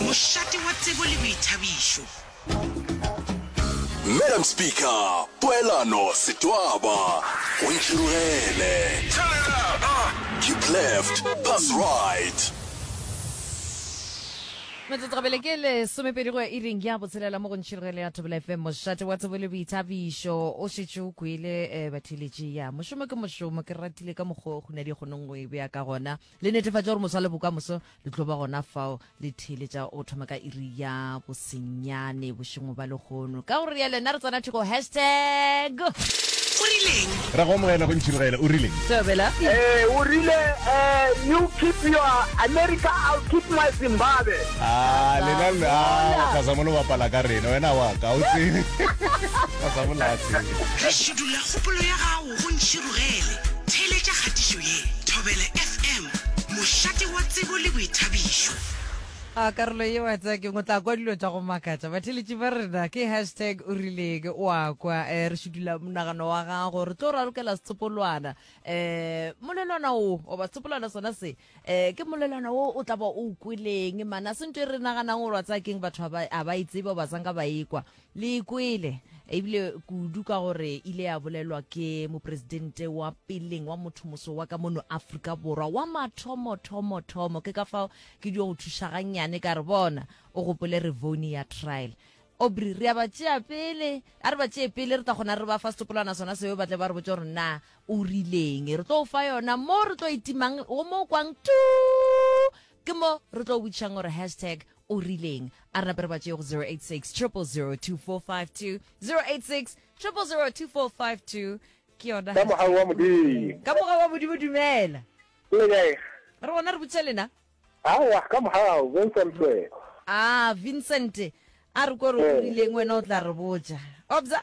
Mošate wa tsebo le boithabišo. Madam Speaker, poelano, setwaba, go ntšhirogele. Keep left, pass right. Metsotso gabele ke lesomepedi go ya iring ya botshelela mo go ntšhirogele ya Thobela FM mošate wa tsebo le boithabišo. O šetše o kwele um batheeletši ya mošomo ke mošomo ke ratile ka mokgwa o kgunadi kgonong go e bea ka gona. le netefatša gore moswa le bokamoso le tlo ba gona fao le theeletša o thoma ka iri ya bosenyane bošengwe ba lekgono ka gore ya lena re tsena thoko hashtag o rileng ra go amogela go ntšhirogela o rileng tobela eh o rile eh you keep your america i'll keep my zimbabwe ah lena la ka sa mo lo bapala ka rena wena wa ka o tsene ka sa mo la tsene re shudula kgopolo ya gago Go ntšhirogele, theeletša kgatišo ye, Thobela FM, mošate wa tsebo le boithabišo. A karolo ye wa tsaya keng? O tla kwa dilo tša go makatša. Batheeletši ba rena ke hashtag o rileng o a kwa. Eh, re šudulla monagano wa gago. Re tlo ralokela setsopolwana. Eh, molelwana o, goba setsopolwana sona se. Eh, ke molelwana wo o tla ba o kweleng mana se ntho e re naganang gore wa tsaya keng batho a ba itsebe ba tsang ka ba ekwa le kwele ebile kudu ka gore ile ya bolelwa ke mopresidente wa peleng wa motho moso wa ka mono aforika borwa wa mathomothomothomo ke ka fao ke dio go thuša gannyane ka re bona o gopole revone ya trial obri re a ba tšea pele a re ba tšee pele re tla kgona re ba fa setopolwana sona seo ba tle ba re botse gore na O rileng? Re tlo o fa yona mo re tlo e timang go mo o kwang tuu ke mo re tlo botšišang gore hashtag o rileng a re nape re ba tšee go 086 0002452086 00024520 ke yona Ka mogau wa Modimo. ka mogau wa modimo dumela Le kae? re gona re botšiša lena Aowa, ka mogau, Vincent Swe. a vincent a re kore o Ee. rileng wena o tla re botša obza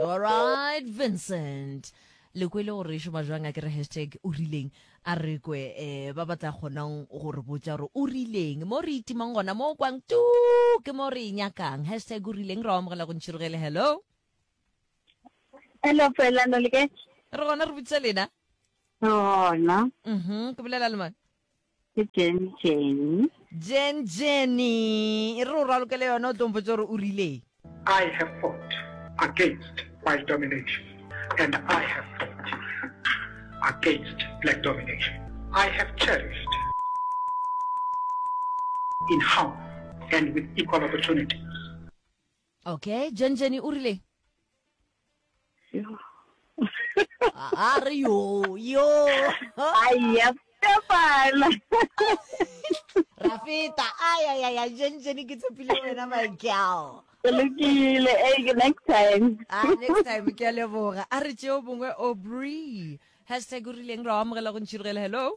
Alright Vincent le kwele gore e šoma jwang a kere hashtag o rileng a re kwe um ba ba tla kgonang go re botša gore o rileng mo re itimang gona mo o kwang tu ke mo re e nyakang hashtag o rileng ra amogela go ntšhirogele hello Hello, Poelano, le kae? re gona re botša lena Gona. mhm ke bolela le mone Ke Jen Jenny. Jen Jenny, e re o ralokele yone o tlo mpotse gore o rileng. I have fought against white domination and I have fought against black domination. I have cherished in harmony and with equal opportunities. Okay, Jenjeni o rile? A re yo, yo. Aiya, Stefana. Ra feta. Ai ai ai, Jenjeni ke tshepile wena my gal. Ke lokile, eh ke next time. Ah, next time ke a leboga. A re tšeo bongwe Aubrey. Hashtag o rileng ra o amogela go ntšhirigela. Hello.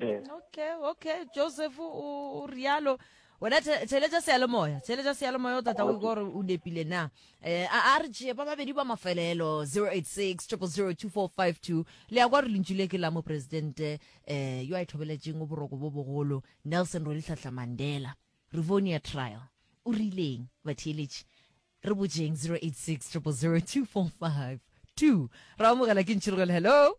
Ee. okay okay joseph o rialo wena theletša seyalemoya theletša seyalemoya o tata o iko gore o nepile na um a re tšee ba babedi ba mafelelo 086 002452 le ya kwa re lentšu le ke la moporesidente um yo a ithobeletšeng o boroko bo bogolo nelson rolitlhatlha mandela revonia trial o rileng batheeletši re bojeng 086 002452 ra amogela ke ntšhirogelo hello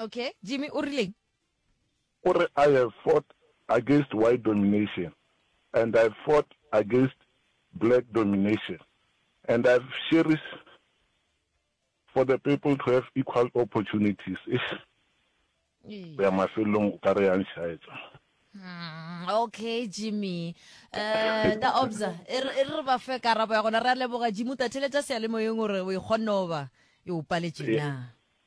Okay, Jimmy o rileng? O re, I have fought against white domination and I fought against black domination and I've cherished for the people to have equal opportunities. Eish, go ya mafelelong o ka re yang shaetsa. Hmm, okay jimmy um ta obsa e re e re ba fe karabo ya gona re a leboga jimmy o tatheletša seyalemoyeng gore o e kgonne oba e o paletše na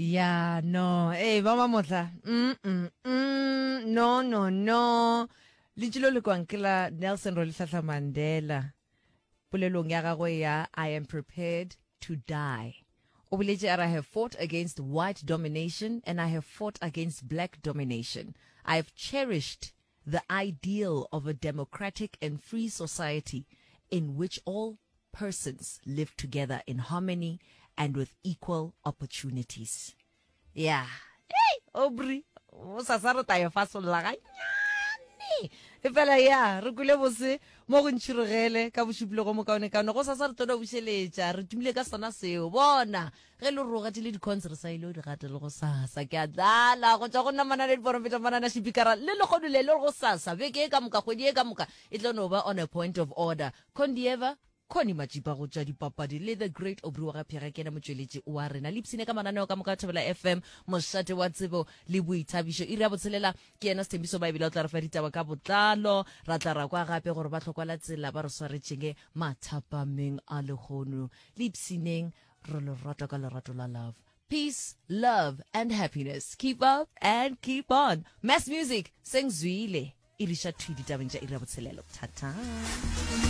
ya no ee hey, ba ba mohla mm, mm, mm, no no no lentši lo le kwang ke la nelson rolihlahla mandela polelong ya gagwe ya i am prepared to die o boletse a re have fought against white domination and i have fought against black domination i have cherished The ideal of a democratic and free society in which all persons live together in harmony and with equal opportunities. Yeah. Hey, Aubrey, o sa sa re tla e fasolla ganyane. efela ya re kule bose mo go ntšhirogele ka bošupile go mokaonekaone go sasa re tlo bušeletša re tumile ka sona seo bona Ge lo roga tile dicons re sa ilo di gata le go sasa ke a tlala go tšwa go nna manana diporofeta manana šipikara le legodu le le go sasa beke e ka moka kgwedi e ka moka e tlo no ba on a point of order condieva Connie Matšipa go tšwa dipapadi le the great Aubrey wa ga Phega ke yena motšweletši wa rena le ipshine ka mananeo ka moka Thobela FM mošate wa tsebo le boithabišo iri ya botshelela ke yena Sethembiso Baebile o tla re fa ditaba ka botlalo ra tla ra kwa gape gore ba tlhokwala tsela ba re swaretšenge mathapameng a lehono le ipshineng re lo rata ka lerato la love peace love and happiness keep up and keep on mass music seng zwile e riša thwi ditabeng tša iri ya botshelelo thata